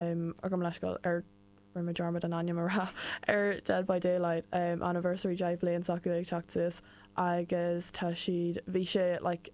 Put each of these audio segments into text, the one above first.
agam leithscéal er rinne mé dearmad an ainm a rá ar Dead by Daylight anniversary deich bliain s'acu ag teacht suas agus tá siad bhí sé like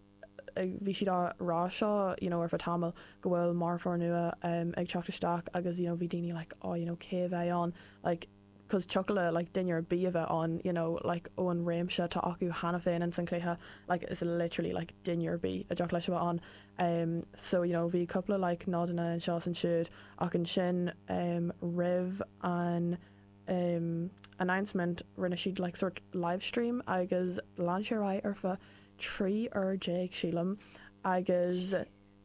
ag bhí siad á rá seo you know ar feadh tamaill go bhfuil marfóir nua ag teacht isteach agus you know bhí daoine like oh you know cé a bheidh ann like cos thiocfadh le duine ar bith a bheith ann you know like ó an réimse atá acu cheana féin in san cluiche like is literally like duine ar bith a dtiocfadh leis a bheith ann em so you know bhí cúpla like nodanna anseo is ansiúd ach ansin em roimh an em announcement rinne siad like sort livestream agus lean sé ar aghaidh ar feadh 13 uair déag sílim agus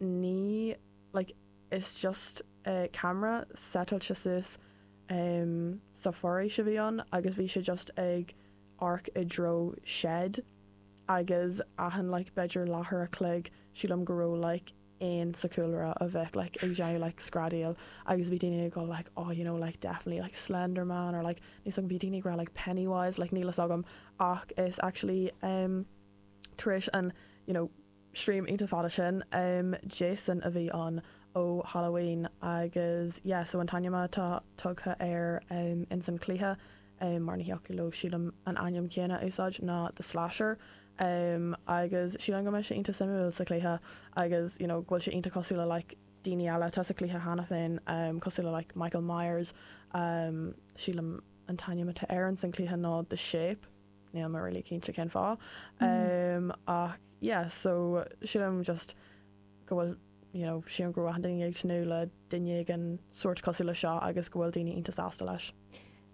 ní like is just camera setailte suas em sa foraois a bhí ann agus bhí sé just ag amharc i dtreo shed agus achan like b'fhéidir leathuair a chloig sílim go raibh like éan sa chúlra a bheadh like ag déanamh like screadaíl agus bhí daoine ag dul like oh you know like definitely like slender man or like níl fhios agam bhí daoine ag rá like penny wise like níl fhios agam ach is actually em tar éis an you know Stream iontach fada sin. Jason a bhí ann ó Halloween agus yeah so an t-ainm atá tugtha air ins an cluiche mar ní thiocfadh leo sílim an ainm céanna a úsáid ná The Slasher agus sílim go mbeidh sé iontach suimiúil sa cluiche agus you know go bhfuil sé iontach cosúil le like daoine eile atá sa cluiche cheana féin cosúil le like Michael Myers sílim an t-ainm atá air ins an cluiche nó The Shape. Níl mé really cinnte cén fáth ach yeah so sílim just go bhfuil you know sílim go raibh achan duine ag tnúth le duine éigin sórt cosúil le seo agus go bhfuil daoine iontach sásta leis.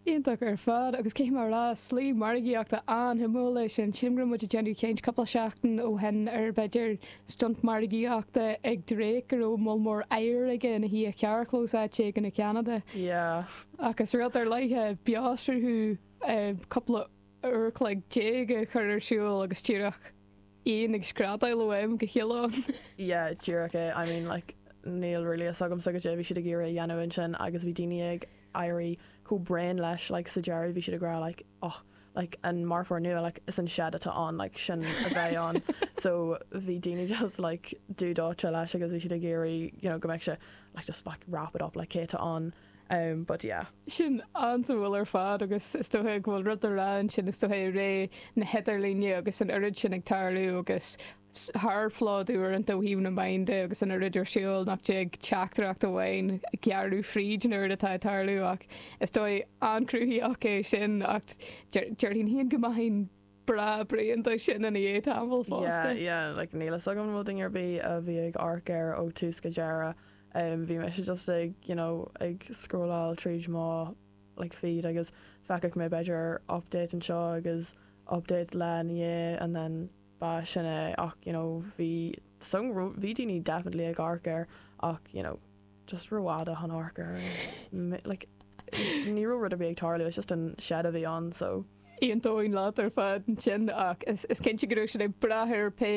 Iontach ar fad agus cé mar shlí margaíochta an-suimiúil é sin. Sílim go raibh muid ag déanamh caint cúpla seachtain ó shin ar b'fhéidir stunt margaíochta ag Drake go raibh moll mór oighir aige ina shuí i gcarrchlós áit éigin i gCeanada. Yeah. Ach is rud ar leith é beoshruth. cúpla uair an chloig déag a chur ar siúl agus díreach éan ag screadaíl ó am go chéile ann. Yeah, díreach é. I mean, like, níl really fhios agamsa goidé a bhí siad ag iarraidh a dhéanamh ansin agus bhí daoine ag éirí chomh bréan leis, like, sa deireadh bhí siad ag rá, like, oh, like, an marfóir nua, like, is an shed atá ann, like, sin a bheidh ann. So, bhí daoine just, like, dubh dóite leis agus bhí siad ag iarraidh, you know, go mbeadh sé, like, just, like, wrap it up, like, cé atá ann? em but yeah. Sin an-suimiúil ar fad agus is dócha go bhfuil rud le rá ansin, is dócha i ré na hidirlíne agus an oiread sin ag tarlú agus tharphlódú uaireanta ó thaobh na meáin de agus an oiread ar siúl nach dtig teachtaireacht amháin a ghearradh fríd an oiread atá ag tarlú ach is dóiche an-chruthaitheach é sin ach déarfainn go maithfinn Breá Brian do sin ina dhiaidh tamall fosta. Yeah yeah like níl fhios agam an bhfuil duine ar bith a bhí ag amharc air ó tús go deireadh. Umm bhí mise just ag you know ag scrolláil tríd mo like feed agus feacaigh mé b'fhéidir update anseo agus update eile ina dhiaidh and then ba sin é ach you know bhí is dóigh go raibh bhí daoine definitely ag amharc air ach you know just rófhada chun amharc air like ní raibh rud ar bith ag tarlú it's just an shed a bhí ann so. Aontaím leat ar fad ansin ach is cinnte go raibh siad ag brath ar pé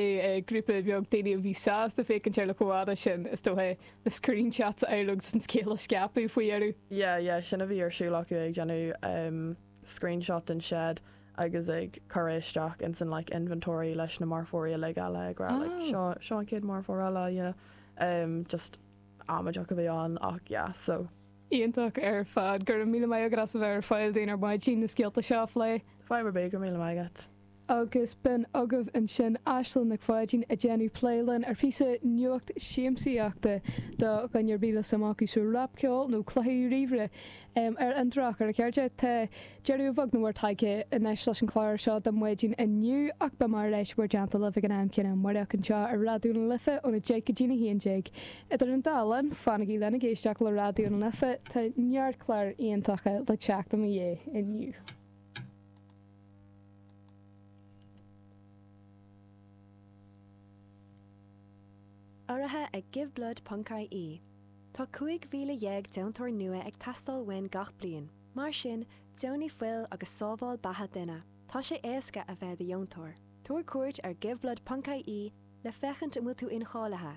grúpa beag daoine a bhí sásta féachaint ar an gcomhfhad sin, is dócha, le screenshots a fháil agus an scéal a scaipeadh faoi dheireadh. Yeah, yeah, sin a bhí ar siúl acu, ag déanamh screenshot den shed agus ag cur é isteach ins an like inventory leis na marfóirí uilig eile ag rá like seo seo an chéad marfóir eile, you know, just amaidí a bhí ann ach yeah so. Iontach ar fad. Go raibh míle maith agat as a bheith ar fáil dúinn ar maidin na scéalta seo a phlé. Fáilte ar bith. Go raibh míle maith agat. Agus b'in agaibh ansin Aislinn Nic Pháidín ag déanamh plé linn ar phíosa nuacht siamsaíochta do dhuine ar bith le suim acu sa rap ceol nó cluichí ríomhaire. Ar an drochuair a chairde, tá deireadh beagnach buailte anois leis an gclár seo do mhaidin inniu, ach beidh mé ar ais beirthe libh ag an am céanna amárach anseo ar Raidió na Life óna deich go dtína haon déag. Idir an dá linn, fanaigí linn ag éisteacht le Raidió na Life, tá neart clár iontacha le teacht i mo dhiaidh inniu. Urraithe ag Giveblood Ponc IE, Tá 15,000 deontóir nua ag teastáil uainn gach bliain, mar sin, deonaigh fuil agus sábháil beatha duine. Tá sé éasca a bheith i do dheontóir. Tabhair cuairt ar Giveblood Ponc IE le féachaint an bhfuil tú incháilithe,